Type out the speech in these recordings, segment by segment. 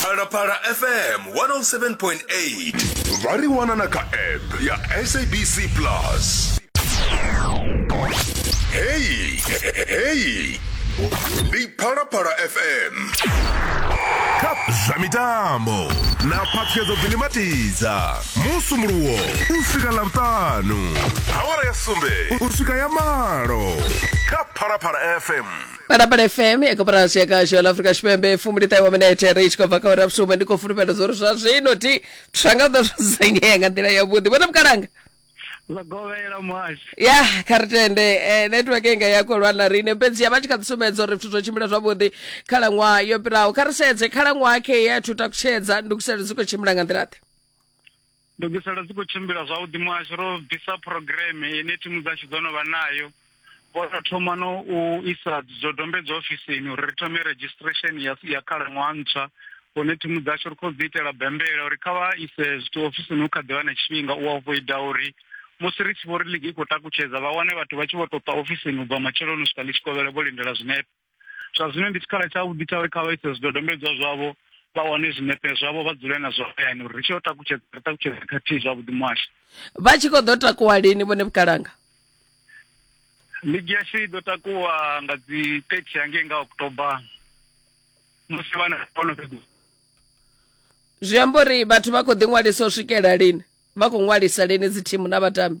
phalaphala fm 107.8 vha ri wana na kha app ya sabc plus heyi heyi ndi phalaphala fm kha zwa mitambo na phaṱhuyedzo bvini matidza musumuluwo u swika ḽavhutanu awara ya sumbe u swika ya malo kha phalaphala fm parapara fm yakaparasi yakashola afrika xipembe fumi lita iwa minete ri tshi khou bva kha uri vhusumbe ndi khou fulufhela zwo ri zwa zwino ti tsha nga ḓo dzudzanyea nga nḓila yavhuḓi vhona vhukalanga zwa govhela muhasho ya kha ri tende eh, network inga ya khou lwa na riṋe fhedzi ya vha tshi kha ḓi sumbedza uri zwithu zwo tshimbila zwavhuḓi khalaṅwaha yo fhiraho kha ri sedze khalaṅwaha khe ya thu takutshedza ndukiselo dzi khou tshimbila nga nḓila ḓe Ndugiselo dzi khou tshimbila zwavhuḓi muhasho, ro bvisa phurogireme ine thimu dzashu dzo no vha nayo, vho tou thoma no u isa zwidodombedzwa ofisini uri ri thome redzhisiṱiresheni ya ya khalaṅwaha ntswa hune thimu dzashu ri khou dzi itela bembela uri kha vha ise zwithu ofisini hu kha ḓi vha na tshifhinga u avoida uri musi ri tshi vho ri ligi i khou takutshedza vha wane vhathu vha tshi vho tou ṱwa ofisini u bva matsheloni u swika ḽi tshi kovhela vho lindela zwinepe. zwa zwino ndi tshikhala tshavhuḓi tsha uri kha vha ise zwidodombedzwa zwavho vha wane zwinepe zwavho vha dzule na zwo hayani uri ri tshi yo takutshedza ri takutshedza khathihi zwavhuḓi muhasho vha tshi khou ḓo takuwa lini vhone vhukalanga ligi yashu i ḓo takuwa nga dzi 30 hangei nga oktoba musi vhana vhono fhedza zwi amba uri vhathu vha khou ḓiṅwalisa u swikela lini vha khou ṅwalisa lini dzi thimu na vhatambi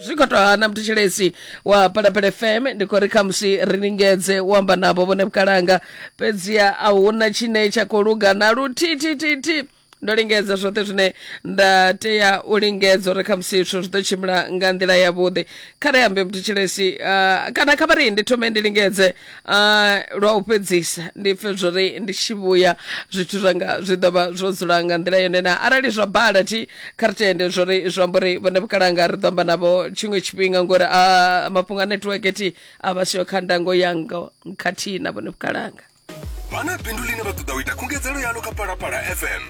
zwi khou tou hana mthetshelesi wa palapala fm ndi khou ri khamusi ri lingedze u amba navho vhone vhukalanga fhedziha a huna tshine tsha khou luga na luthithithithi ndo lingedza zwoṱhe zwine nda tea u lingedza uri khamusi zwithu zwi ḓo tshimbila nga nḓila yavhuḓi kha ri ambe mthetshelesi uh, kana kha vha ri ndi thome ndi lingedze Ah, lwa u fhedzisa ndi pfe zwori ndi tshi vhuya zwithu zwanga zwi ḓo vha zwo dzula nga nḓila yone na arali zwa bala thi kha ri tende zwori zwi amba uri vhone vhukalanga ri ḓo amba navho tshiṅwe tshifhinga ngori a mafhungo a netiweke thi a vha siho kha ndango yanga khathihi na vhone vhukalanga vha na bindu line vha ṱoḓa u ita khungedzelo yalo kha palapala fm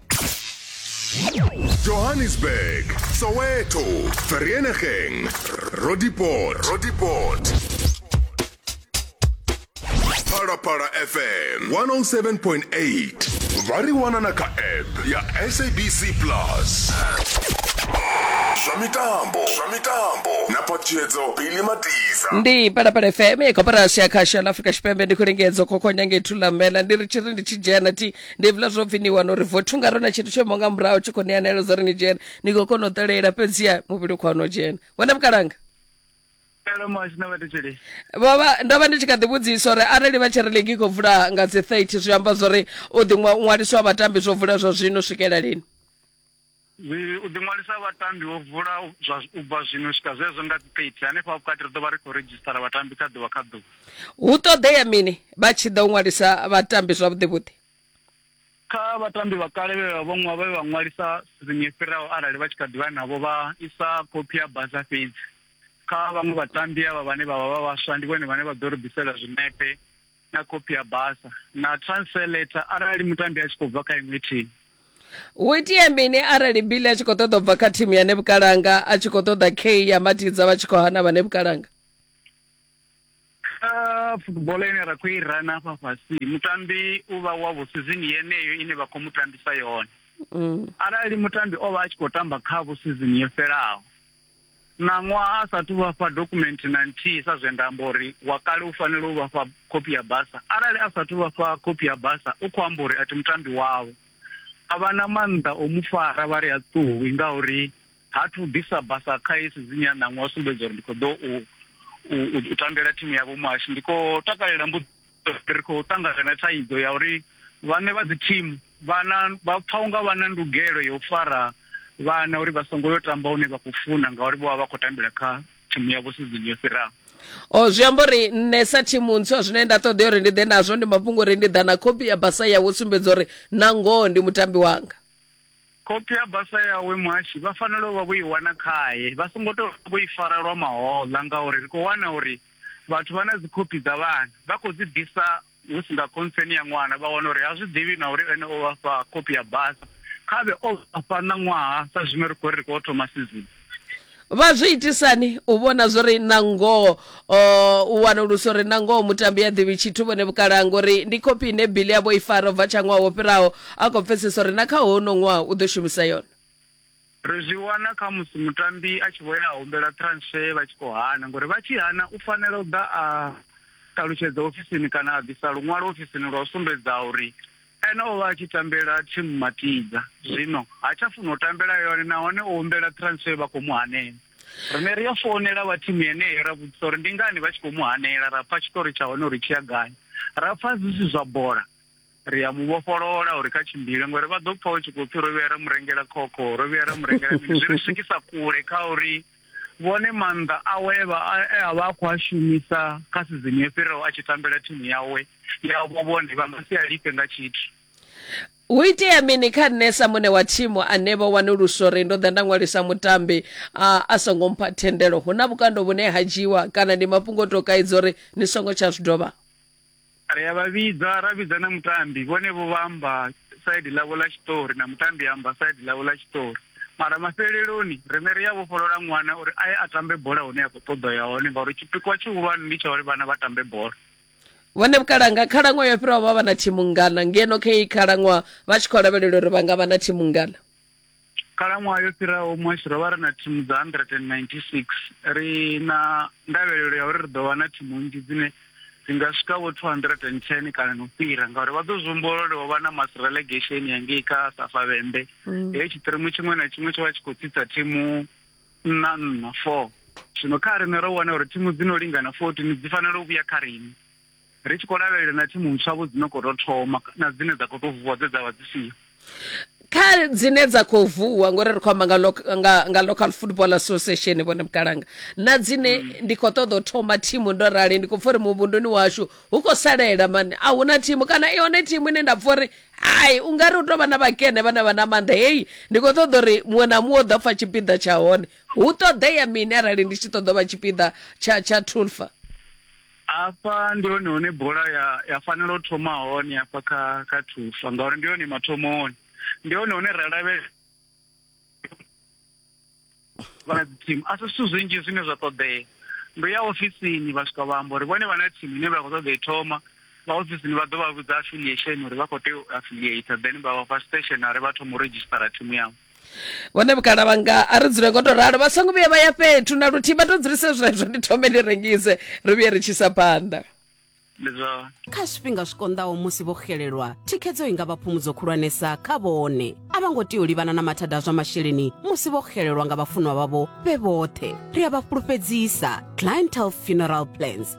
Johannesburg, Soweto, Vereeniging, Roodepoort, Roodepoort. Para Para FM 107.8. Variwana na ka app ya SABC Plus. Zwa mitambo, zwa mitambo na patshedzo Billy Matisa. ndi parapara fm koporasi ya khasho la afrika tshipembe ndi khulengedza khokhonya ngethu lamela ndi ri tshi ri ndi tshi dzhena ti ndi hevhila zwo pfhi ni wana uri vothu nga rona tshithu tsho imaho nga murahu tshi khou ṋea naelo dza uri ni dzhena ni khou kona u ṱalela fhedziha muvhili khou no dzhena wena vhukalanga Hello Mosh na vhathetshelesi. vhovha ndo vha ndi tshi kha ḓi vhudzisa uri arali vha tshi ri ligi i khou vula nga dzi 30 zwi amba zwa uri u ḓi ṅwa- ṅwaliswa ha vhatambi zwo vula zwa zwino u swikela lini Ii, U ḓiṅwalisa ha vhatambi ho vula zwa u bva zwino u swika zwezwo nga dzi 30. Hanefha vhukati ri ḓo vha ri khou redzhisitara vhatambi kha ḓuvha kha ḓuvha. Hu ṱoḓea mini vha tshi ḓa u ṅwalisa vhatambi zwavhuḓivhuḓi? Kha vhatambi vha kale vhe vha vha vhe vha ṅwalisa sizini yo fhiraho arali vha tshi kha ḓi vha navho vha isa khophi ya basa fhedzi. Kha vhaṅwe vhatambi avha vhane vha vha vha vhaswa ndi vhone vhane vha ḓo ri ḓisela zwinepe na khophi ya basa na transfer letter arali mutambi a tshi khou bva kha iṅwe thimu hu itea mini arali bili a tshi khou ṱoḓa u bva kha thimu ya nebukalanga a tshi khou ṱoḓa k ya matidza vha tshi khou hana vha nebukalanga kha football ine ra khou i rana afha fhasi mutambi u vha wavho sizini yeneyo ine vha khou mu tambisa yone mm. arali mutambi o vha a tshi khou tamba khavho sizini yo fhelaho Ṋaṅwaha a sa athu u vha fha dokhumenthe na nthihi sa zwe nda amba uri wa kale u fanela u vha fha khophi ya basa. Arali a sa athu u vha fha khophi ya basa, u khou amba uri a thi mutambi wavho. A vha na maanḓa o mu fara vha ri ha ṱuwi ngauri ha athu u ḓisa basa kha heyi sizini ya ṋaṅwaha u sumbedza uri ndi khou ḓo u tambela thimu ya vhomuhasho. Ndi khou takalela mbudziso. ri khou ṱangana na thaidzo ya uri vhaṋe vha dzi thimu vha na vha pfha unga vha na ndugelo ya u fara vhana uri vha songo yo tamba hune vha khou funa ngauri vho vha vha khou tambela kha thimu yavho sizini yo fhiraho o oh, zwi amba uri nṋe sa thimu ntswa zwine nda ṱoḓea uri ndi ḓe nazwo ndi mafhungo uri ndi ḓa na khophi ya basa yawe u sumbedza uri na ngoho ndi mutambi wanga Khophi ya basa yawe muhashi vha fanela u vha vho i wana khae, vha songo tou vha vho i fara lwa mahoḽa ngauri ri khou wana uri vhathu vha na dzikhophi dza vhana vha khou dzi ḓisa hu si nga khontseni ya ṅwana vha wana uri ha zwi ḓivhi na uri ene o vha fha khophi ya basa. Kha vhe o vha fha ṋaṅwaha sa zwino ri khou ri ri khou thoma sizini. vha zwi itisani u vhona zwo ri na ngoho u wanulusa uri na ngoho mutambi a ḓivhi tshithu vhone vhukalaha ngori ndi khophi ine bili yavho i fara u bva tsha ṅwaha wo fhiraho a khou pfesesa uri na kha hono ṅwaha u ḓo shumisa yone ri zwi wana kha musi mutambi a tshi vho ya a humbela transfer vha tshi khou hana ngori vha tshi hana u fanela u ḓa a ṱalutshedza ofisini kana a bvisa luṅwalo ofisini lwa u sumbedza uri Ene o vha a tshi tambela thimu Mativa, zwino ha tsha funa u tambela yone nahone o humbela transfer vha khou mu hanela. Rine ri a founela vha thimu yeneyo ra vhudzisa uri ndi ngani vha tshi khou mu hanela, ra pfa tshiṱori tsha hone uri tshi ya gai. Ra pfa zwi si zwa bola, ri a mu vhofholola uri kha tshimbile ngori vha ḓo pfa hu tshi khou pfi ro vhuya ra mu rengela khokho, ro vhuya ra mu rengela mini, zwi ri swikisa kule kha uri vhone maanḓa awe e a vha a khou a shumisa kha sizini yo fhiraho a tshi tambela thimu yawe ya vho vhone vha nga si a lifhe nga tshithu. Hu itea mini kha nṋe sa muṋe wa thimu ane vho wanulusa uri ndo ḓa nda ṅwalisa mutambi a, a songo mpha thendelo? Hu na vhukando vhune ha dzhiiwa kana ndi mafhungo o tou kaidza uri ni songo tsha zwi dovha? Ri a vha vhidza, ra vhidza na mutambi, vhonevho vha amba saidi ḽavho ḽa tshiṱori na mutambi a amba saidi ḽawe ḽa tshiṱori. Mara mafheleloni riṋe ri a vhofholola ṅwana uri a ye a tambe bola hune ya khou ṱoḓa u ya hone ngauri tshipikwa tshihulwane ndi tsha uri vhana vha tambe bola. Vhone Vhukalanga, khalaṅwaha yo fhiraho vha vha na thimu nngana ngeno kha iyi khalaṅwaha vha tshi khou lavhelela uri vha nga vha na thimu nngana? Khalaṅwaha yo fhiraho muhasho ro vha ri na thimu dza 196 ri na ndavhelelo ya uri ri ḓo vha na thimu nnzhi dzine dzi nga swika vho 210 kana no fhira ngauri vha ḓo zwihumbula uri ho vha na mass relegation ya ngei kha safavhembe mm. heyo tshiṱirimu tshiṅwe na tshiṅwe tsho vha tshi khou tsitsa thimu nna nna four zwino kha riṋe ro wana uri thimu dzi no lingana 14 dzi fanela u vhuya kha riṋe ri tshi khou lavhelela na thimu ntswa-vho dzi no khou tou thoma na dzine dza khou tou vuwa dze dza vha dzi siho. kha dzine dza khou vuwa ngori ri khou amba nga, loc- nga, nga local football association vhone vhukalanga na dzine ndi khou ṱoḓa u thoma thimu ndo rali ndi khou pfa uri muvhunduni washu hu khou salela mani a huna thimu kana i hone thimu ine nda pfa uri hai u nga ri u tou vha na vhakene vhane vha na maanḓa heyi ndi khou ṱoḓa uri muṅwe na muṅwe u ḓo pfa tshipiḓa tsha hone hu ṱoḓea mini arali ndi tshi ṱoḓa u vha tshipiḓa tsha tsha tulfa Afha ndi hone hune bola ya ya fanela u thoma hone afha kha kha thufa ngauri ndi hone mathomoni ndi hone hune ra lavhelela vha team a si zwithu zwinzhi zwine zwa ṱoḓea ndo ya ofisini vha swika vha amba uri vhone vha na team ine vha khou ṱoḓa i thoma vha ofisini vha ḓo vha vhudza affiliation uri vha khou tea u affiliate then vha vha fha stationary vha thoma u redzhisitara thimu yavho vhone vhukala vhanga a ri dzule ngo to ralo vha songo vhuya vha ya fhethu na luthihi vha to dzulise zwezwo ndi thome ndi rengise ri vhuye ri tshisa phanḓa kha zwifhinga zwi konḓaho musi vho xelelwa thikhedzo i nga vha phumudzo khulwanesa kha vhone a vha ngo tea u livhana na mathada a zwa masheleni musi vho xelelwa nga vhafunwa vhavho vhe vhoṱhe ri a vha fhulufhedzisa clientel funeral plans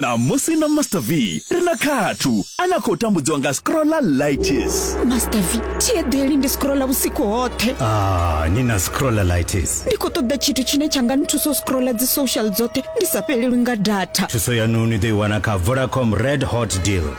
ṋamusi na master v ri na khathu a na khou tambudziwa nga scrolla lightis master v thi eḓeli ndi scrolla vhusiku hoṱhe ah, ni na scrolla lightis ndi khou ṱoḓa tshithu tshine tsha nga nthusa u scrolla dzi social dzoṱhe ndi sa fhelelwi nga data thuso yanu ni ḓo i wana kha vodacom red hot deal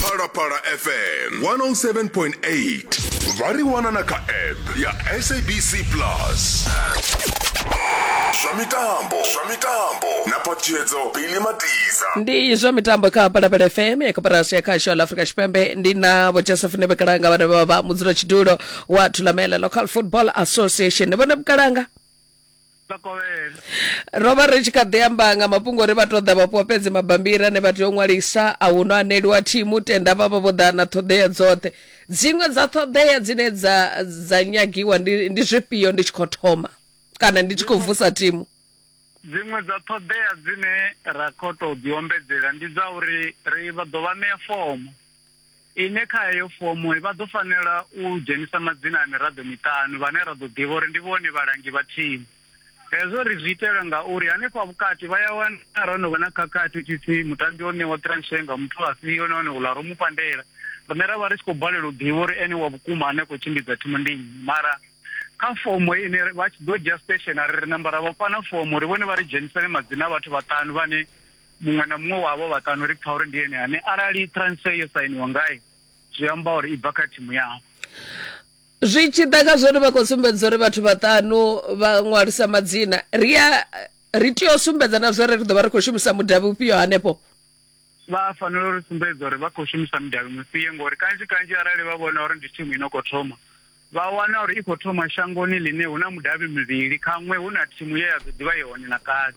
phalaphala fm 107.8 vha ri wana na kha app ya sabc plus zwa mitambo zwa mitambo na phathiedzo bili matiza ndi zwa mitambo kha palapala fm ya koporasi ya khasho la afrika tshipembe ndi na vho joseph nebekalanga vhane vha vha mudzula tshidulo wa thulamela local football association vhone bukalanga ro vha ri tshi kha ḓi amba nga mafhungo uri vha tou ḓa vhafhiwa fhedzi mabambiri ane vha tea u ṅwalisa a hu no aneliwa thimu tenda vha vha vho ḓa na ṱhoḓea dzoṱhe dziṅwe dza ṱhoḓea dzine dza dza nyagiwa ndi ndi zwifhio ndi tshi khou thoma kana ndi tshi khou vusa thimu dziṅwe dza ṱhoḓea dzine ra khou tou ḓiombedzela ndi dza uri ri vha ḓo vha ṋea fomo Ine kha heyo fomo vha ḓo fanela u dzhenisa madzina a miraḓo miṱanu vhane ra ḓo ḓivha uri ndi vhone vhalangi vha thimu. Hezwo ri zwi itela ngauri hanefha vhukati vha ya wana arali ho no vha na khakhathi u tshi pfi mutambi o ṋewa transfer nga muthu afhio nahone uḽa ro mu pandela, riṋe ra vha ri tshi khou balelwa u ḓivha uri ene wa vhukuma ane a khou tshimbidza thimu ndi nnyi. Mara kha fomo ine vha tshi ḓo dzhia stationery ri namba ra vha fha na fomo uri vhone vha ri dzhenisele madzina a vhathu vhaṱanu vhane Muṅwe na muṅwe wa avho vhaṱanu ri pfa uri ndi ene ane arali transfer yo sainiwa ngae zwi amba uri i bva kha thimu yavho. Zwi tshi ḓa kha zwori vha khou sumbedza uri vhathu vhaṱanu vha ṅwalisa madzina ri a ri tea u sumbedza na zwori ri ḓo vha ri khou shumisa mudavhi ufhio hanefho vha fanela uri sumbedza uri vha khou shumisa mudavhi mufhio ngori kanzhi kanzhi arali vha vhona uri ndi thimu ino khou thoma vha wana uri i khou thoma shangoni ḽine hu na mudavhi mivhili khaṅwe hu na thimu ye ya ḓo ḓivha yone na kale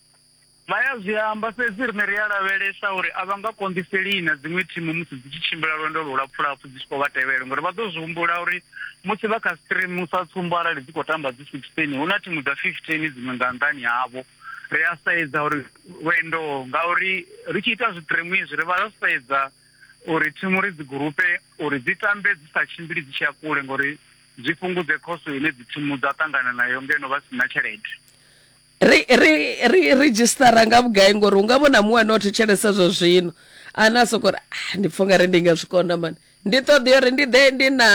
Vha ya zwi amba, fhedzi riṋe ri a lavhelesa uri a vha nga konḓiselii na dziṅwe thimu musi dzi tshi tshimbila lwendo lulapfulapfu dzi tshi khou vha tevhela ngauri vha ḓo zwi humbula uri musi vha kha stream, sa tsumbo arali dzi khou tamba dzi 16, hu na thimu dza 15 dziṅwe nga nnḓani havho. Ri a sedza uri lwendo ngauri ri tshi ita zwitreamu izwi ri vha ro sedza uri thimu ri dzi gurupe uri dzi tambe dzi sa tshimbili dzi tshi ya kule ngauri zwi fhungudze khoso ine dzi thimu dza ṱangana nayo ngeno vha si na tshelede. ri ri ri redzhisitara nga vhugai ngori u nga vhona muṅwe ane o thetshelesa zwa zwino ane a soko ri ah, ndi pfha ungari ndi nga zwi kona mani ndi ṱoḓea uri ndi ḓe ndi na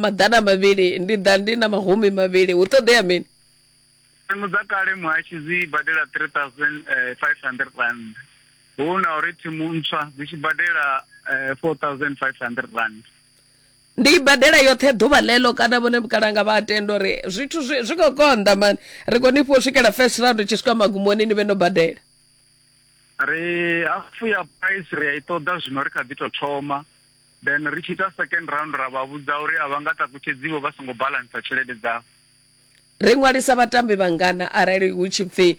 maḓana mavhili ndi ḓa ndi na mahumi mavhili hu ṱoḓea mini tsimu dza kale muhashi dzi badela 3500 rand hu na uri thimu ntswa dzi tshi badela 4500 eh, rand Ndi i badela yoṱhe ḓuvha ḽeḽo kana vhone vhukalanga vha a tenda uri zwithu zwi zwi khou konḓa mani ri khou ni fhiwa u swikela first round tshi swika magumoni ni vhe no badela ri hafu ya price ri a i ṱoḓa zwino ri kha ḓi tou thoma then ri tshi ita second round ra vha vhudza uri a vha nga takutshedziwo vha songo balansa tshelede dzavho ri ṅwalisa vhatambi vhangana arali hu tshi pfhi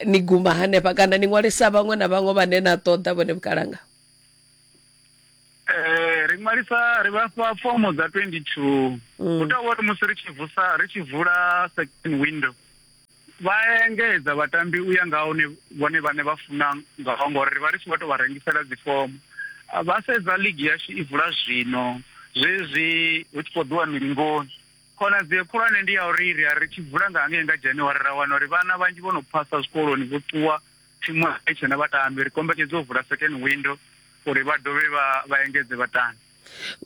ni guma hanefha kana ni ṅwalisa vhaṅwe na vhaṅwe vhane na ṱoḓa vhone vhukalanga Eh, ri ṅwalisa ri vhafha fomo dza 22 mm. hu tovha uri musi ri tshi vusa ri tshi vula second window vha engedza vhatambi u ya nga hune vhone vhane vha funa ngaho ngori ri vha ri tshi vho tou vha rengisela dzifomo ah, vha sedza ligi yashu i vula zwino zwezwi hu tshi khou ḓiwa milingoni khonadzeo khulwane ndi ya uri ri a ri tshi vula nga hangei nga januwari ra wana uri vhana vhanzhi vho no phasa zwikoloni vho ṱuwa Thimu a i tshena vhatambi, ri kombetshedza u vula second window uri vha dovhe vha vha engedze vhatambi.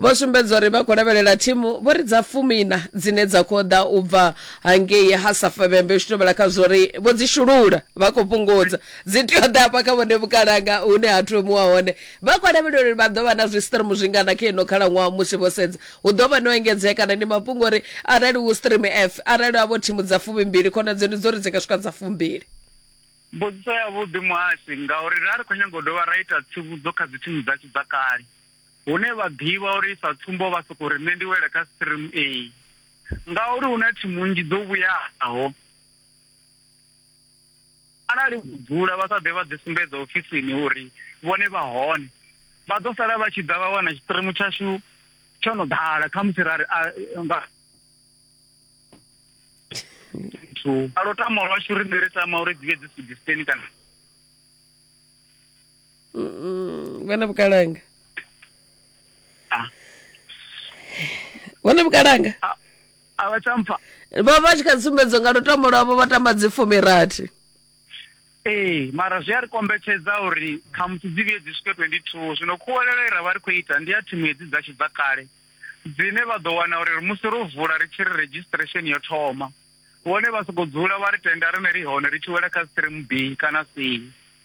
Vho sumbedza uri vha khou lavhelela thimu vho ri dza fumi-iṋa dzine dza khou ḓa u bva hangei ha Safavhembe u tshi tovhela kha zwo ri vho dzi shulula vha khou fhungudza, dzi tea u ḓa hafha kha vhone vhukalanga hune ha thomiwa hone. Vha khou lavhelela uri vha ḓo vha na zwistrimu zwingana kha ino khalaṅwaha musi vho sedza hu ḓo vha no engedzea kana ndi mafhungo uri arali hu stream F arali havho thimu dza fumi-mbili khonadzeo ndi dza uri dzi nga swika dza fumbili. Mbudziso yavhuḓi muhasho ngauri ra ri khou nyaga u dovha ra ita tsivhudzo kha dzithimu dzashu dza kale hune vha ḓivha uri sa tsumbo vha sokou ri nṋe ndi wela kha stream A ngauri hu na thimu nnzhi dzo vhuyaho arali vho dzula vha sa ḓe vha ḓi sumbedza ofisini uri vhone vha hone vha ḓo sala vha tshi ḓa vha wana tshiṱirimu tshashu tsho no ḓala khamusi ra ri nga a lo tama lwashu ri ri tama uri dzi vhe dzi suggestion kana vhona vhukalanga vhona vhukalanga a vha tsha mpfa vha vha tshi kha dzi sumbedzo nga lutamo lwavho vha tamba dzi fumirathi ee mara zwi a ri kombetshedza uri khamusi dzi vhuye dzi swike 22 zwino khuwelelo i ra vha ri khou ita ndi ya thimu hedzi dzashu dza kale dzine vha ḓo wana uri musi ro vula ri tshi ri registration yo thoma vhone vha sokou dzula vha ri tenda rine ri hone ri tshi wela kha stream b kana c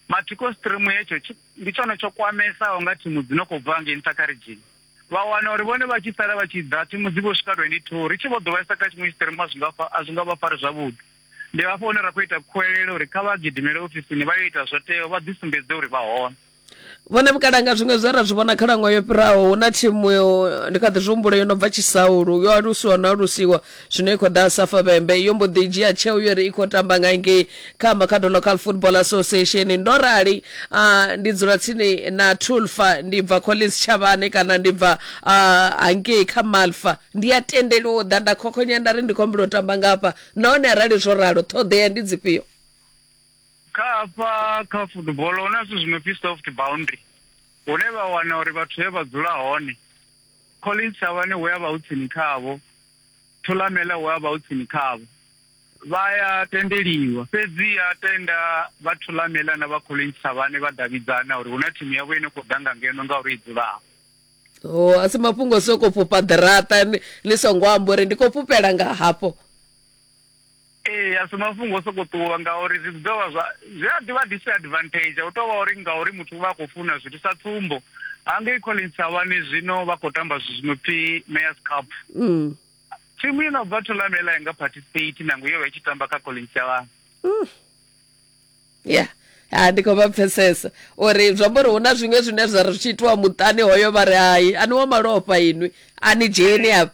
mathiko stream hetsho ndi tshone tsho kwamesaho nga thimu dzi no khou bva ngei nṱha kha ridzhini vha wana uri vhone vha tshi sala vha tshi ḓa thimu dzi vho swika 22 ri tshi vho ḓo vhaisa kha tshiṅwe stream a zwi nga a zwi nga vha fari zwavhuḓi ndi hafho hune ra khou ita khuwelelo uri kha vha gidimele ofisini vha yo ita zwo teaho vha ḓisumbedze uri vha hone vhone vhukalanga zwiṅwe zwe ra zwi vhona khalaṅwaha yo fhiraho hu na thimu ndi kha ḓi zwi humbula yo no bva tshisaulu yo alusiwa no alusiwa zwino i khou ḓa safa vhembe yo mbo ḓi dzhia tsheo yo ri i khou tamba nga ngei kha makhado local football association ndo rali ndi dzula tsini na tulfa ndi bva collins tshavhane kana ndi bva hangei kha malfa ndi a tendeliwa u ḓa nda khokhonya nda ri ndi khombela u tamba ngafha nahone arali zwo ralo ṱhoḓea ndi dzifhio Kha hafha kha football hu na zwithu zwi no pfi soft boundary hune vha wana uri vhathu he vha dzula hone Collins Thavhani hu ya vha hu tsini khavho Thulamela hu ya vha hu tsini khavho vha ya tendeliwa fhedzi ya tenda vha Thulamela na vha Collins Thavhani vha davhidzana uri hu na thimu yavho ine khou ḓa nga ngeno ngauri i dzulaho o oh, a si mafhungo soko fhufha ḓiraṱa ni songo amba uri ndi khou fhufhela nga hafho Ee, a si mafhungo o sokou ṱuwa ngauri zwi ḓo vha zwa zwi a ḓivha disadvantage. Hu tou vha uri ngauri muthu u vha a khou funa zwithu. Sa tsumbo, hangei Collins Thabani zwino vha khou tamba zwithu zwi no pfi Mayors Cup. Mm. Thimu i no bva Thulamela ya nga participate nangwe yo vha i tshi tamba kha Collins Thabani. Mm. Yeah. ha ndi khou vha pfesesa uri zwi amba uri hu na zwiṅwe zwine zwa ri tshi itiwa muṱani hoyo vha ri hai ani wa malofha inwi a ni dzheni afha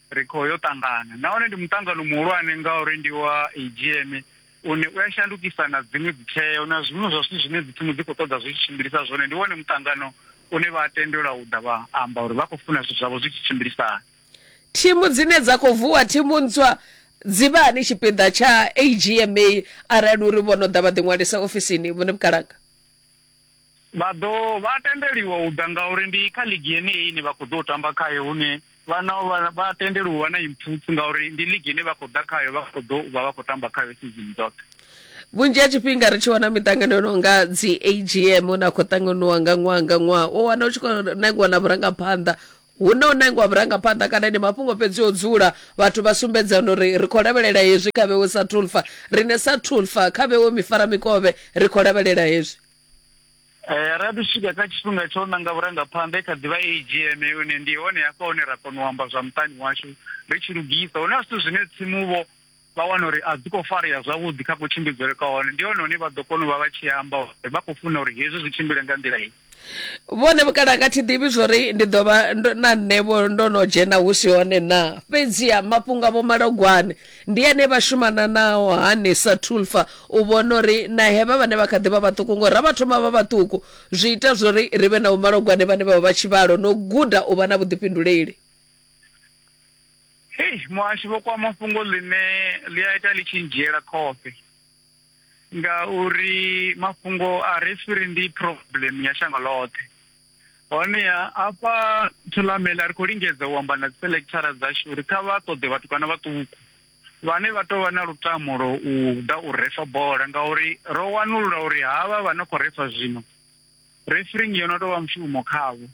Ri khou yo ṱangana nahone ndi muṱangano muhulwane ngauri ndi wa AGM une u a shandukisa na dziṅwe dzitsheo na zwiṅwe zwa zwithu zwine dzitsimu dzi khou ṱoḓa zwi tshi tshimbilisa zwone. Ndi wone muṱangano une vha a tendelwa u ḓa vha amba uri vha khou funa zwithu zwavho zwi tshi tshimbilisana. Thimu dzine dza khou vuwa thimu ntswa dzi vha hani tshipiḓa tsha AGMA arali uri vho no ḓa vha ḓiṅwalisa ofisini, Vho Nebukalanga? Vha ḓo vha a tendeliwa u ḓa ngauri ndi kha ligi yeneyi ine vha khou ḓou tamba khayo hune vha na vha vha tendeliwa u vha na impfutsu ngauri ndi ligi ine vha khou ḓa khayo vha khou ḓo vha vha khou tamba khayo sizini dzoṱhe. Vhunzhi ha tshifhinga ri tshi wana miṱangano yo no nga dzi AGM hune a khou ṱanganywa nga ṅwaha nga ṅwaha u wana u tshi khou nangiwa na vhurangaphanḓa Hu na u nangwa vhurangaphanḓa kana ndi mafhungo fhedzi o dzula? Vhathu vha sumbedzana uri ri khou lavhelela hezwi kha vhewe sa Tulfa. Riṋe sa Tulfa, kha vhewe Mifaramikovhe, ri khou lavhelela hezwi. Eh, ra ḓi swika kha tshifhinga tsha u nanga vhurangaphanḓa, i kha ḓi vha AGM yone. Ndi hone hafha hune ra kona u amba zwa muṱani washu ri tshi lugisa. Hu na zwithu zwine tsimu-vho. vha wana uri a dzi khou farea zwavhuḓi kha kutshimbidzele kwa hone, ndi hone hune vha ḓo kona u vha vha tshi amba uri vha khou funa uri hezwi zwi tshimbile nga nḓila iyi. Vhone vhukale a nga thi ḓivhi zwo ri ndi ḓo vha na nṋe-vho ndo no dzhena hu si hone naa. Fhedziha mafhungo a Vho Malogwane ndi ane vha shumana nao hani sa Tulfa u vhona uri na hevha vhane vha kha ḓi vha vhaṱuku, ngori ra vha thoma vha vhaṱuku zwi ita zwo ri ri vhe na Vho Malogwane vhane vha vha vha tshivhalo na u guda u vha na vhuḓifhinduleli. Hei muhashi vho kwama fhungo ḽine ḽi a ita ḽi tshi ndzhiela khofhe ngauri mafhungo a re swiri ndi problem ya shango ḽoṱhe honeha afha thulamela ri khou lingedza u amba na dzi selectara dzashu uri kha vha ṱoḓe vhathu kana vhaṱuku vhane vha tou vha na lutamo lwa u ḓa u refa bola ngauri ro wanulula uri havha vha no khou refa zwino refereeing yo no tou vha mushumo khavho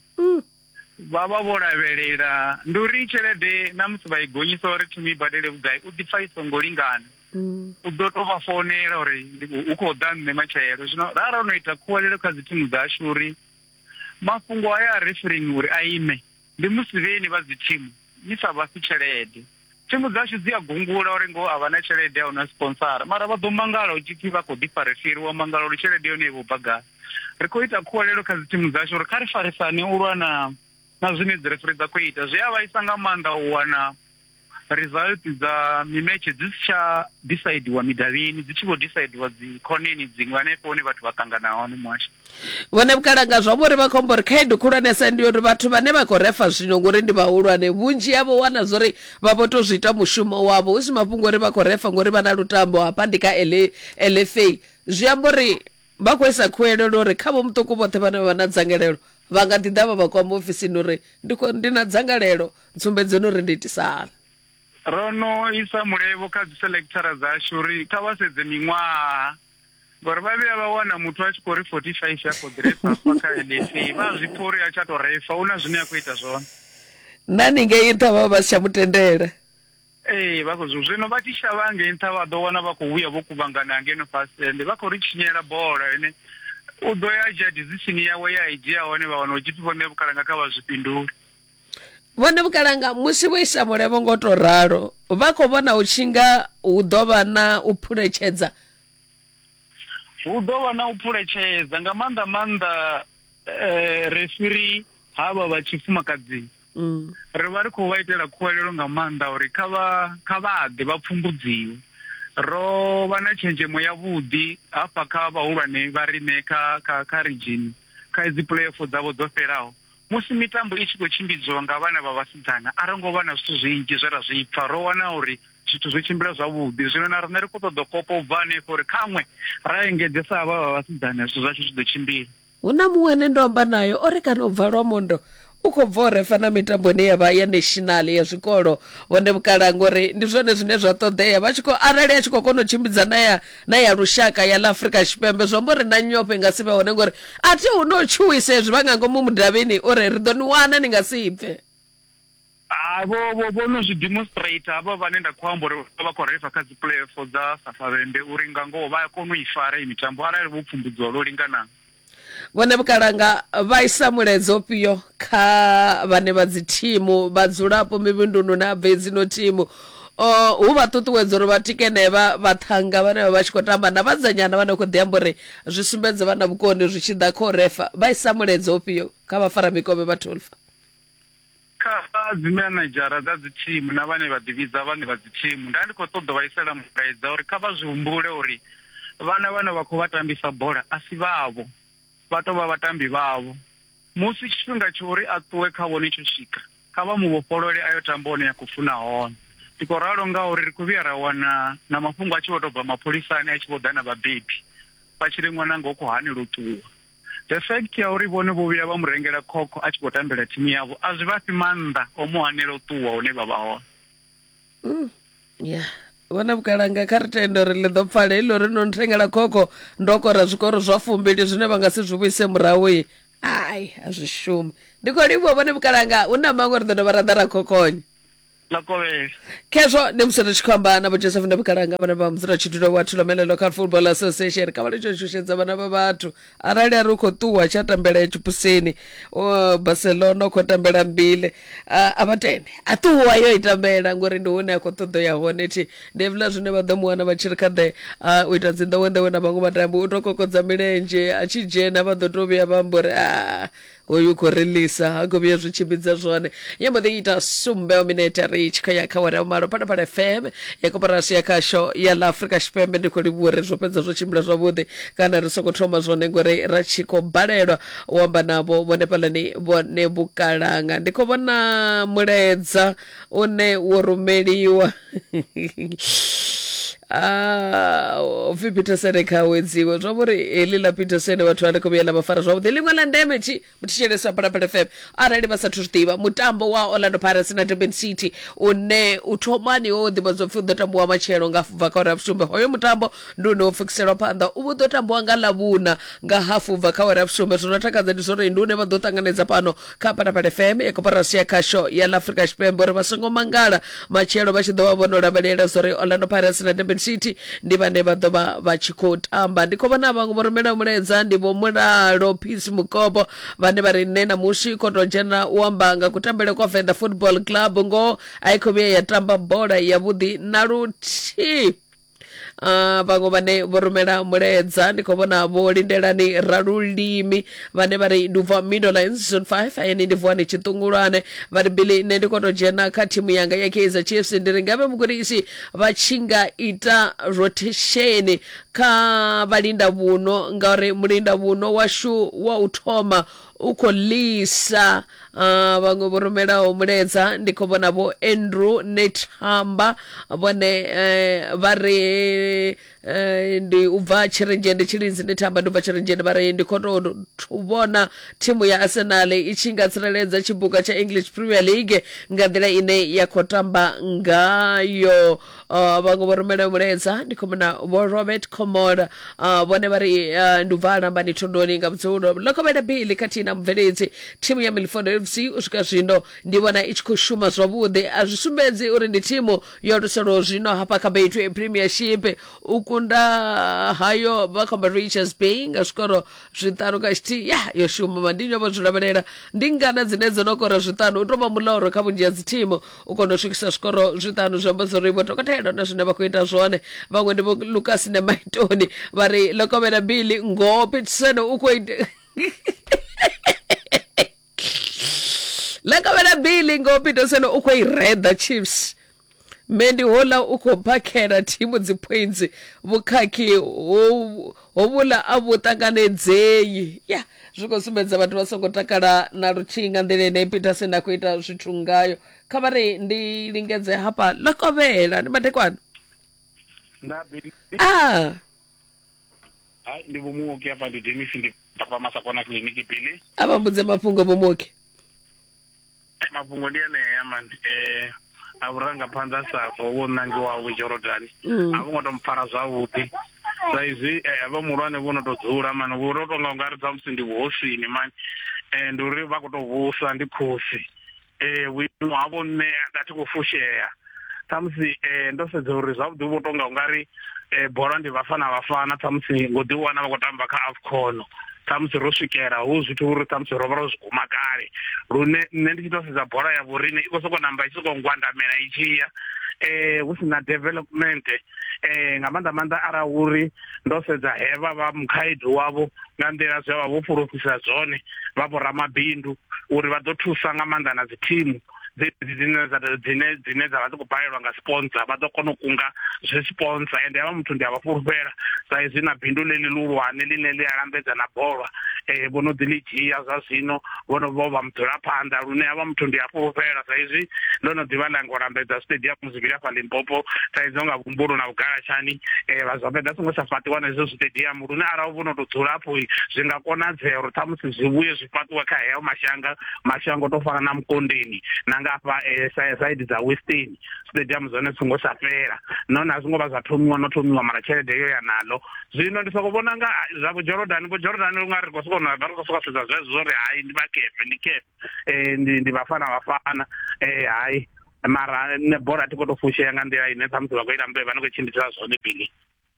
vha vha vho lavhelela ndi uri tshelede na musi vha i gonyisa uri thimu i badele vhugai u ḓipfa i songo lingana u ḓo to vha founela uri hu khou ḓa nṋe matshelo zwino ra ro no ita khuwelelo kha dzi thimu dzashu uri mafhungo haya a referring uri a ime ndi musi vheni vha dzi thimu ni sa vhasi tshelede Thimu dzashu dzi a gungula uri ngoho a vha na tshelede ya u na sponsara, mara vha ḓo mangala hu tshi pfi vha khou ḓi farisiri, wa mangala uri tshelede yone i vho bva gai. Ri khou ita khuwelelo kha dzithimu dzashu uri kha ri farisane u lwa na na zwine dzirefiri dza khou ita. Zwi a vhaisa nga maanḓa u wana result dza mimetshe dzi si tsha disaidiwa midavhini, dzi tshi vho disaidiwa dzikhoneni dziṅwe hanefho hune vhathu vha ṱangana hone muhasho. vhone vhukalanga zwa vhori vha khombo uri khaedu khulwanesa ndi uri vhathu vhane vha khou refa zwino ngori ndi vhahulwane vhunzhi yavho wana zwa uri vha vho to zwi ita mushumo wavho hu si mafhungo uri vha khou refa ngori vha na lutambo hafha ndi kha lfa zwi amba uri vha khou isa khuwelelo uri kha vho muṱuku vhoṱhe vhane vha vha na dzangalelo vha nga ḓi ḓa vha vha kwama ofisini uri ndi na dzangalelo ntsumbedzeni uri ndi itisa hani ro no isa mulevho kha dzi selectora dzashu uri kha vha sedze miṅwaha ngori vha vhuya vha wana muthu a tshi khou ri forty five a khou ḓirefa hafha kha lsa vha a zwi pfa uri a tsha tou refa u na zwine a khou ita zwone na ni ngei nṱha vha vha vha si tsha mu tendela ee vha khou zwi zwino vha tshi shavha ngei nṱha vha ḓo wana vha khou vhuya vho kuvhangana hangeno fhasi ende vha khou ri tshinyela bola ene u ḓo ya a dzhia decision yawe ya i dzhia hone vha wana u tshipfi vhone vhukalanga kha vha zwi fhindule vhone vhukalanga musi vho isa mulevho ngo to ralo vha khou vhona u tshinga hu ḓo vha na u phuletshedza hu ḓo vha na u phuletshedza nga maanḓa maanḓa eh, refiri havha vha tshifumakadzini mm. ri vha ri khou vha itela khuwelelo nga maanḓa uri kha vha kha vha ḓe vha pfumbudziwe ro vha na tshenzhemo ya vhuḓi hafha kha vhahulwane vha rine kha kha kha region kha dzi playoff dzavho dzo fhelaho Musi mitambo i tshi khou tshimbidziwa nga vhana vha vhasidzana, a ro ngo vha na zwithu zwinzhi zwe ra zwi pfa. Ro wana uri zwithu zwo tshimbila zwavhuḓi. Zwino na riṋe ri khou ṱoḓa u kopa u bva hanefha uri khaṅwe ra engedzesa havha vha vhasidzana zwithu zwashu zwi ḓo tshimbila. Hu na muṅwe ane ndo amba nae o ri kana u bva Lwamondo u khou bva u refa na mitambo ine ya vha ya national ya zwikolo hone vhukalanga uri ndi zwone zwine zwa ṱoḓea vha tshi khou arali a tshi khou kona u tshimbidza na ya na ya lushaka ya ḽa afurika tshipembe zwi amba uri na nyofho i nga si vhe hone ngori a thi hu no tshuwisa hezwi vha nga ngomu mudavhini uri ri ḓo ni wana ni nga si bve Ah, vho vho vho no zwi demonstrate havha vhane nda khou amba uri vha vha khou refa kha dzi playoff dza safavhembe uri nga ngoho vha a kona u i fara iyi mitambo arali vho pfumbudziwa lwo linganaho vhone vhukalanga vha isa muledzo fhio kha vhane vha dzi thimu vhadzulapo mivhundunu na bvedzi no thimu hu vha ṱuṱuwedza uri vha tikene vha vhaṱhanga vhane vha vha tshi khou tamba na vhadzanyana vha no khou ḓi amba uri zwi sumbedze vha na vhukoni zwi tshi ḓa kha u refa vha isa muledzo fhio kha vhafaramikovhe vha tolfa Kha dzimenedzhara dza dzithimu na vhane vha ḓivhidza vhaṋe vha dzithimu, nda ndi khou ṱoḓa u vha isela mulaedza uri kha vha zwi humbule uri vhana vhane vha khou vha tambisa bola a si vhavho, vha tou vha vhatambi vhavho. Musi tshifhinga tsha uri a ṱuwe kha vhone tsho swika, kha vha mu vhofholole a yo tamba hune a khou funa hone. Ndi khou ralo ngauri ri khou vhuya ra wana na mafhungo a tshi vho tou bva mapholisani a tshi vho ḓa na vhabebi vha tshi ri ṅwananga u khou hanelwa u ṱuwa. the fact ya uri vhone vho vhuya vha mu rengela khokho a tshi khou tambela thimu yavho a zwi vha fhi maanḓa o mu hanela u ṱuwa hune vha vha hone mm, ya vhona vhukalanga kha ri tende uri ḽi ḓo pfala heḽi uri no nthengela khokho ndo kora zwikoro zwa fumbili zwine vha nga si zwi vhuise murahu i ai a zwi shumi ndi khou livhuwa vhone vhukalanga hu na maṅwe ri ḓo dovha ra ḓa ra khokhonya Makovhela. khezwo ndi musi ri tshi khou amba na vho joseph ndobikalanga vhane vha mudzulatshidulo wa thulomela local football association kha vha litsho shushedza vhana vha vhathu arali a ri u khou ṱuwa tsha tambela ya tshipusini o, barcelona u khou tambela mbile a a vha tende a ṱuwa yo i tambela ngori ndi hune a khou ṱoḓo ya hone thi ndi hevhila zwine vha ḓo mu wana vha tshi ri kha ḓe a, u ita dzinḓowenḓowe na vhaṅwe vhatambi u tou kokodza milenzhe a tshi dzhena vha ḓo tou vhuya vha amba uri a Hoyu u khou ri lisa ha khou vhuya zwi tshimbidza zwone ya mbo ḓi ita sumbe minete ri tshi khou ya kha wera vhumalo phalaphala fm ya koporasi ya khasho ya ḽa afrika tshipembe ndi khou livhuwa uri zwo fhedza zwo tshimbila zwavhuḓi kana ri songo thoma zwone ngori ra tshi khou balelwa u amba navho vhone fhalani vhone vhukalanga ndi khou vhona mulaedza une wo rumeliwa Ah, upfi peterson kha wedziwe zwa vhori heḽi ḽa peterson vhathu vha ri khou vhuya ḽa vha fara zwavhuḓi ḽiṅwe ḽa ndeme tshi thetshelesa phalaphala fm arali vha sathu zwi ḓivha mutambo wa orlando pirates na durban city une u thomani wo ḓivhadzwa pfhi u ḓo tambiwa matshelo nga bva kha uri ya vhusumbe hoyo mutambo Nduni wo pfukiselwa phanḓa u vhu ḓo tambiwa nga ḽavhuna nga hafu ubva kha awara ya vhusumbe zwo no takadza ndi zwori ndune vha ḓo ṱanganedza fhano kha phalaphala fm ya koporasi ya khasho ya ḽa afrika tshipembe uri vha songo mangala matshelo vha tshi ḓo vha vho no lavhelela zwori orlando pirates na durban city ndi vhane vha ḓo vha vha tshi khou tamba ndi khou vhona vhaṅwe vho rumela mulaedza ndi vho mulalo peace mukopo vhane vha ri nṋe na musi khou tou dzhena u amba nga kutambele kwa venḓa football club ngoho a i khou vhuya ya tamba bola yavhuḓi na luthihi Ah, vhaṅwe vhane vho rumela mulaedza ndi khou vhona vho lindelani ralulimi vhane vha ri ndi ubva middle line season 5 ayeni ndi vuwani tshiṱungulwane vha ri bili nṋe ndi khou tou dzhena kha thimu yanga ya kaizer chiefs ndi ri ngavhe mugudisi vha tshi nga ita rotation kha vhalinda vhuno ngauri mulinda vhuno washu wa u thoma u khou ḽisa uh, vhaṅwe vho rumelaho muledza ndi khou vhona vho andrew nethamba vhone uh, vha ri uh, ndi u bva tshirenzhende tshilinzi nethamba ndi u bva tshirenzhende vha ri ndi khou tou thu- vhona thimu ya arsenal i tshi nga tsireledza tshibuga tsha english premier league nga nḓila ine ya khou tamba ngayo uh, vhaṅwe vho rumela mulaedza ndi khou muna vho robert comora uh, vhone vha ri uh, ndi ubva alambani thondoni nga vhudzulo lokovhela bili khathihi na mubveledzi thimu ya milford fc u swika zwino ndi vhona i tshi khou shuma zwavhuḓi a zwi sumbedzi uri ndi thimu yo luselaho zwino hafha kha betway premiership u kunda hayo vha khomba richards bay nga zwikoro zwiṱanu kha tshithihi ya yo shuma mandinyo vho zwi lavhelela ndi ngana dzine dzo no kora zwiṱanu u tou vha muloro kha vhunzhi ha dzithimu u kona u swikisa zwikoro zwiṱanu zwi amba zwori vho dokotela na zwine vha khou ita zwone vhaṅwe ndi vho lucas na maitoni vha ri lokovhela bili ngoho peterson u khou ita lokovhela bili ngoho peterson u khou i reda chiefs mendi hola u khou phakhela thimu dzipoints vhukhakhi ho Hovhuḽa a vhu ṱanganedzei. Ya, zwi khou sumbedza vhathu vha songo takala na luthihi nga nḓila ine Peterson a khou ita zwithu ngayo. Kha vha ri ndi lingedze hafha ḽa kovhela. Ndi madekwana. Nda Billy. Ah. Hai, ndi Vho Muoki hafha ndi Dennis ndi hafha Masakona kiḽiniki Billy. A vha mbudze mafhungo Vho Muoki. Mafhungo ndi enea man eh a vhurangaphanḓa a sa bvo vho ṋangiwaho vho Jorodani mm. a vho ngo to mpfara zwavhuḓi sa izwi eh, vha muhulwane vho no to dzula mani vho to tonga ungari dza musi ndi vhuhosini mani um eh, ndi uri vha khou to vhusa ndi khosi um eh, vhuimo havho nṋe a thi khou fushea ṱhamusi um ndo sedza uri zwavhuḓi vho tonga u nga ri um bola ndi vhafana vhafana ṱhamusi ngo ḓi wana vha khou tamba kha afcono ṱhamusi ro swikela hu zwithu uri ṱhamusi ro vha ro zwi guma kale lune nṋe ndi tshi tou sedza bola ya vhorine i khou sokou namba i tshi sokou ngwandamela i tshi ya eh hu sina development eh nga maanḓa maanḓa ara uri ndo sedza hevha vha mukhaedu wavho nga nḓila zwe vha vho pfulufhisa zwone vha vho ramabindu uri vha ḓo thusa nga maanḓa na dzi thimu dzine dzine dzine dza vha dzi khou balelwa nga sponsor vha ḓo kona u kunga zwe sponsor ende havha muthu ndi a vha fhulufhela sa izwi na bindu ḽe ḽi luhulwane ḽine ḽi a lambedza na bola um vho no ḓi ḽi dzhia zwa zwino vho no vho vha mudzulaphanḓa lune havha muthu ndi a fhulufhela sa izwi ndo no ḓivha ḽa ngo lambedza stadium zwivhili hafha limpopo sa izwi nga vhumbulo na vhugalatshani um vha zwa fhedza songo tsha fhaṱiwa na izwo stadium lune arali vho no tou dzula afho zwi nga konadzea uri ṱhamusi zwi vhuye zwi fhaṱiwe kha heyo mashanga mashango to fana na mukondeni na nga afha eh, side dza western stadium zone zwi songo tsha fhela nahone a zwi ngo vha zwa thomiwa no thomiwa mara tshelede yo ya nalo zwino ndi soko vhona nga ah, zwa vhujordan vhujordan u nga ri khou sokou na vha ri khou sokou sedza zwezwo zwo ri hayi ndi vhakepe ndi kepe um ndi ndi vhafana vhafana um eh, hayi mara ne bola a thi khou tou fushea nga nḓila ine ṱhamusi vha khou ita mbe vha ni khou tshimbidza zwone bili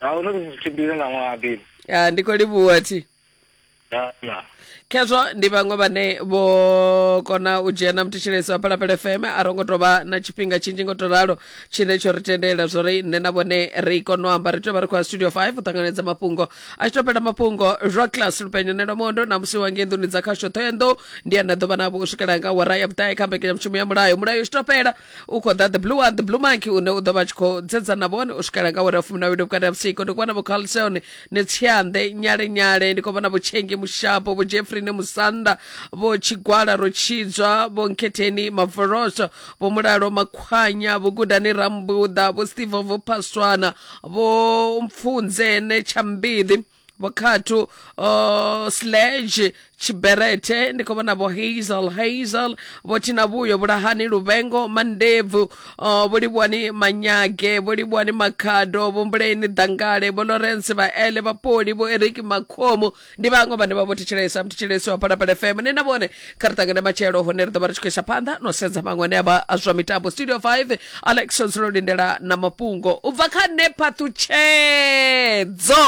a ndo ndi tshimbile na ṅwaha bini Ah, ndi khou livhuwa thi na na khezwo ndi vhaṅwe vhane vho kona u dzhena muthetshelesi wa phalaphala fm a ro ngo tou vha na tshifhinga tshinzhi ngo to ralo tshine tsho ri tendela zwo ri nṋe na vhone ri kone u amba ri tea vha ri khou ya studio 5 u ṱanganedza mafhungo a tshi to fhela mafhungo zwa class lupenyo nelo mondo na musi wa ngei nḓuni dza khasho ṱhoyandou ndi ane a ḓo vha navho u swikela nga wara ya vhuṱae kha mbekanyamushumo ya mulayo mulayo u tshi to fhela u khou ḓa the blue one the blue monkey une u ḓo vha tshi khou dzedza na vhone u swikela nga wera fumi na wili vhukati ha vhusiku ndi khou vhona vhokhalseone ni tsianḓe nyale nyale ndi khou vhona vhotshenge mushapo vho jeffrine musanda vho tshigwala ro tshidzwa vho nkhetheni mavoloso vho mulalo makhwanya vho gudani rambuḓa vho steve vho phaswana vho mpfunzene tshambiḓi vho khathu uh, sledge tshiberete ndi khou vhona vho hazel hazel vho thina vhuyo vhulahani luvengo mandebvu uh, vho livhuwani manyage vho livhuwani makhado vho mbuleni dangale vho lawrence vha ele vhapoli vho eriki makhomo ndi vhaṅwe vhane vha vho thetshelesa mthetshelesi wa phalaphala fm ni na vhone kha ri ṱangane matshelo hone ri ḓo vha ri tshi khou isa phanḓa no sedza maṅwe ane avha a zwa mitambo studio 5 alex nzulo lindela na mafhungo u bva kha nṋe phaṱhutshedzo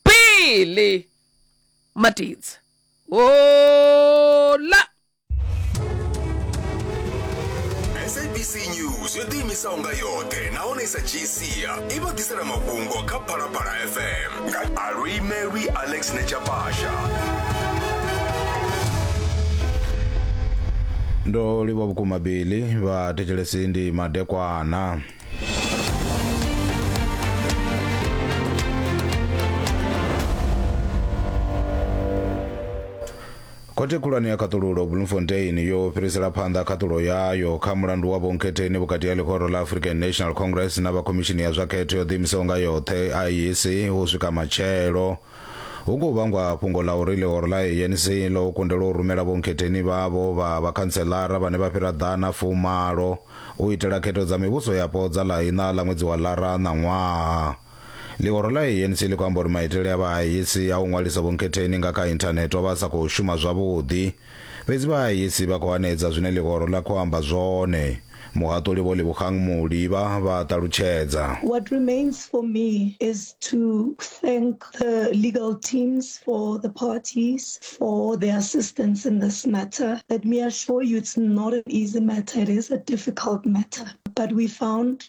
bili matidzi hola sabc news yo ḓiimisaho nga yoṱhe nahone i sa dzhii sia i vha ḓisela mafhungo kha phalaphala fm Alui Mary Alex Nechapasha. ndo livha vhukuma bili vha thetshelesi ndi madekwana Khothe Khulwane ya Khaṱululo Bloemfontein yo fhirisela phanḓa khaṱulo yayo kha mulandu wa vhonkhetheni vhukati ha ḽihoro ḽa African National Congress na vha Khomishini ya zwa Khetho yo ḓiimisaho nga yoṱhe IEC u swika matshelo. Hu khou vhangwa fhungo ḽa uri ḽihoro ḽa ANC ḽo kundelwa u rumela vhonkhetheni vhavho vha vhakhantseḽara vhane vha fhira ḓana fumalo u itela khetho dza mivhuso yapo dza ḽa iṋa ḽa ṅwedzi wa ḽara ṋaṅwaha. Ḽihoro ḽa ANC ḽi khou amba uri maitele a vhahaisi a u ṅwalisa vhunkhetheni nga kha inthanethe o vha a sa khou shuma zwavhuḓi. Fhedzi vhahaisi vha khou hanedza zwine ḽihoro ḽa khou amba zwone. Muhaṱuli Vho Lebogang Muli vha vha ṱalutshedza. What remains for me is to thank the legal teams for the parties for their assistance in this matter. Let me assure you it's not an easy matter, it is a difficult matter. But we found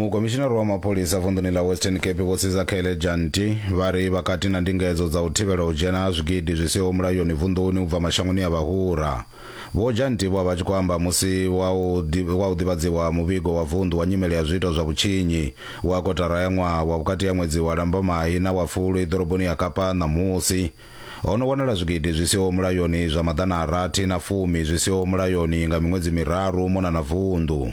mukomishinari wa mapholisa vunḓuni ḽa western cape vho sizakhele janti vha ri vhakati na ndingedzo dza u thivhela u dzhena ha zwigidi zwi siho mulayoni vunḓuni u bva mashangoni a vhahura Vho Jan Ntibwa vha tshi khou amba musi wa u wa u ḓivhadziwa muvhigo wa vunḓu wa nyimele ya zwiito zwa vhutshinyi wa kotara ya ṅwaha wa vhukati ha ṅwedzi wa Lambamai na wa Fulwi ḓoroboni ya Kapa ṋamusi, ho no wanala zwigidi zwi siho mulayoni zwa maḓana a rathi na fumi zwi siho mulayoni nga miṅwedzi miraru mona na vunḓu.